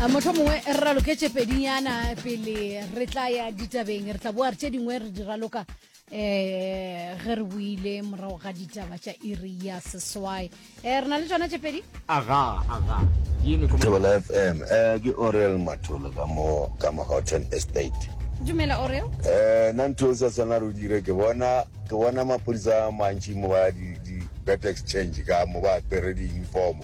a motlho mongwe re raloketse pedinyana pele re tla ya ditabeng re tla boa re tse dingwe re di raloka eh ge re buile morago ga ditaba tša iri ya seswai um re na le tsona tše pedi aga aga Thobela FM eh ke Orel Matholo ka mo ka mo Houghton Estate dumela oreo eh na ntho e sa tshwana re o dire ke bona ke bona maphodisa a mantši mo ba di di bet exchange ka mo ba apere di uniform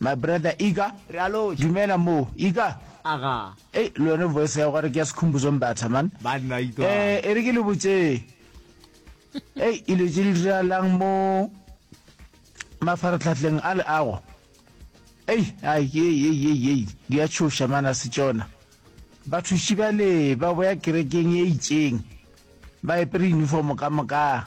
My brother Iga, Re a loja. Dumela moo, Iga. Aga. Ei, le yone voice ya go gore ke ya Sikhumbuzo Mbatha, man. Banna itwa. Eh, e re ke le botše. Ei, ilo tše di diralang mo mafaratlhatleng a le ago. Ei, ai, ei, ei, ei, ei, di a tšhoša mana se tšona. Bathuši ba le ba boya kerekeng e itšeng. Ba epere uniform ka moka.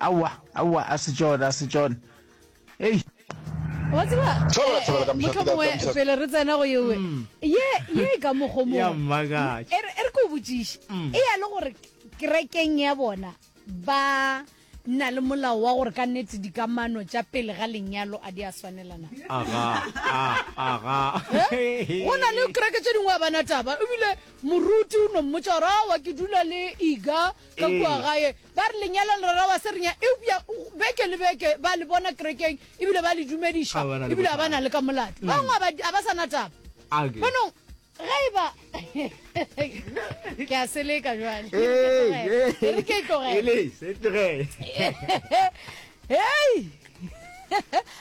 Aowa, aowa, a se tšona, a se tšona. Ei! Wa tseba, Thabela, thabela, eh, ka eh, mehla, mohlomongwe thabela, ka mehla. pele re tsena go yewe, ye, ye e ka mokgo mongwe. Ya mmakatša. E re- e re ke o botšiše e ya le gore kerekeng ya bona ba na le molao wa gore ka nnete dikamano tša pele ga lenyalo a di a swanelana Aga, a, aga. Eh? go na le kereke tše dingwe a bana taba ebile moruti o no mmotsa gore awa ke dula le iga ka kua gae ba re lenyalong re ra wa serinya eupša beke le beke ba le bona kerekeng ebile ba le dumediša ebile a ba na le ka molato ba bangwe a ba sa na taba bonong ge e ba ke a seleka jale re ke tlogele hei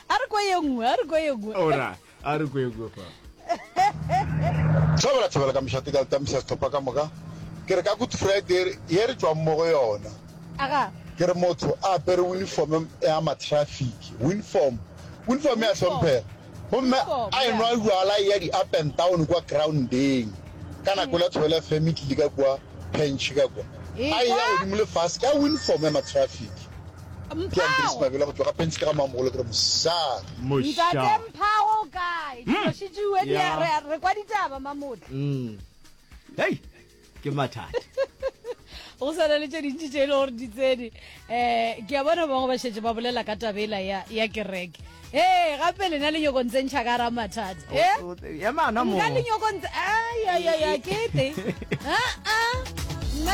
a re kwa ye nngwe a re kwa ye nngwe a re kwekwe fa thabela thabela ka mešate ka tamisa setlhopha ka moka ke re ka good friday ye re tswang mo go yona ke re motho a apere uniform ya matraffic uniform uniform ya tlhomphega gomme a enwa jala ya di-up and down kwa groundeng ka nako la tshwele fm e tlile ka kwa pench ka kwa a eya godimo le fase ka uniform ya matraffic hei ke mathata go sana le tse dintši tse e le gore di tsene um ke a bona bangwe ba šetse ba bolela ka tabela ya kereke ee gape lena le nyoko ntse ntšha ka ra mathata nka le nyoko ntse ayayaya kete aa